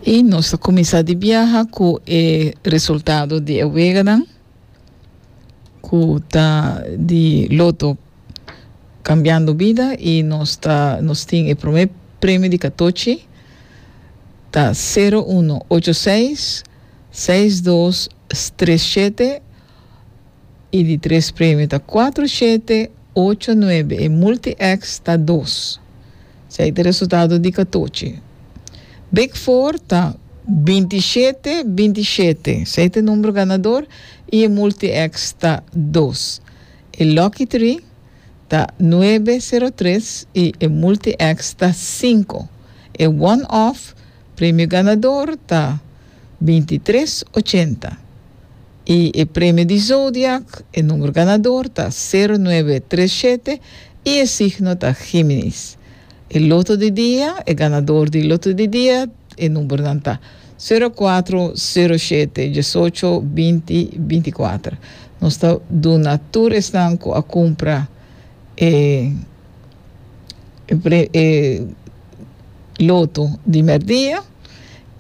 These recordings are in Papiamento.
Y nos ta cuminsa di biaha cu e resultado di e weganan cu ta di loto Cambiando Vida y nos ta nos tin e prome premio di catochi ta sero uno ocho seis seis dos tres shete y di tres premio ta cuatro shete ocho nuebe e multi X ta dos. Esei ta resultado di katochi. Big Four ta binti shete, binti shete. Esei ta e numero ganador y e multi X ta dos. E Lucky Three ta nuebe, sero, tres y e multi X ta cinco. E One Off Premio ganador ta bintitres ochenta y e premio di zodiak e numero ganador ta sero nuebe tres shete y e signo ta Giminis. E loto di dia e ganador di loto di dia e numeronan ta sero cuatro, sero shete, diesocho, binti, binticuater. Nos ta duna tur esnan cu a cumpra e. e loto di merdia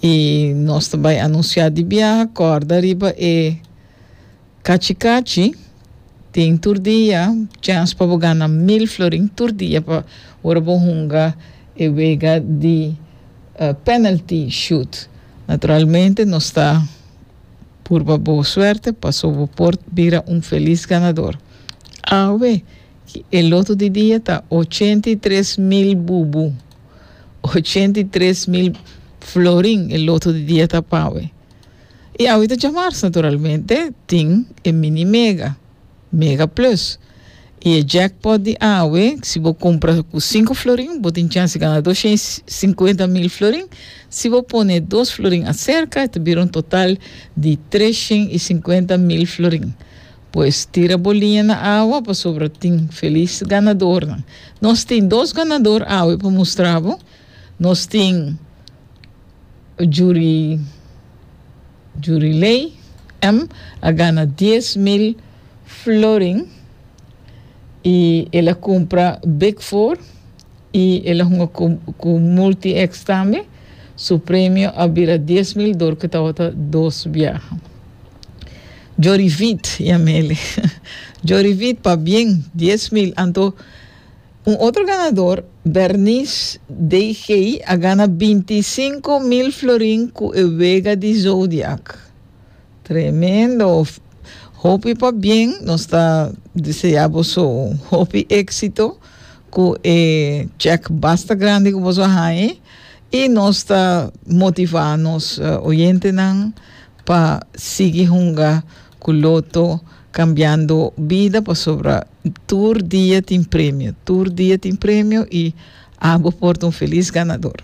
y nos ta bay anuncia di biaha corda riba e cachi cachi tin tur dia chance pa bo gana mil florin tur dia pa ora bo hunga e wega di uh penalty shoot naturalmente nos ta purba bo suerte paso bo por bira un feliz ganador awe E loto di dia ta ochenta i tres mil bubu, ochenta i tres mil florin e loto di dia ta pawe. I awe ta djamars naturalmente tin e mini mega, mega plus. I e jackpot di awe si bo kumpra ku sinku florin bo tin chans di gana doshen i sinkuenta mil florin, si bo pone dos florin aserka e ta bira un total di treshen i sinkuenta mil florin. Pues tira bo liña na awa pasobra tin felis ganadornan. Nos tin dos ganador awe pa mustra bo. Nos tin Juri Juriley M. a gana dies mil florin i el a kumpra Big Four. I el a hunga ku ku Multi-X tambe. Su premio a bira dies mil dor ku tabata dos biaha. Djorivit i a mele. Djorivit pabien dies mil. Anto un otro ganador, Bernice DG. a gana binti i sinku mil florin ku e wega di Zodiac. Tremendo! Hopi pabien. Nos ta deseá boso hopi éksito Ku e chèk basta grandi ku boso a haña i nos ta motivá nos oyentenan pa sigui hunga ku Loto Cambiando Vida pasobra tur dia tin premio, tur dia tin premio i abo por ta un felis ganador.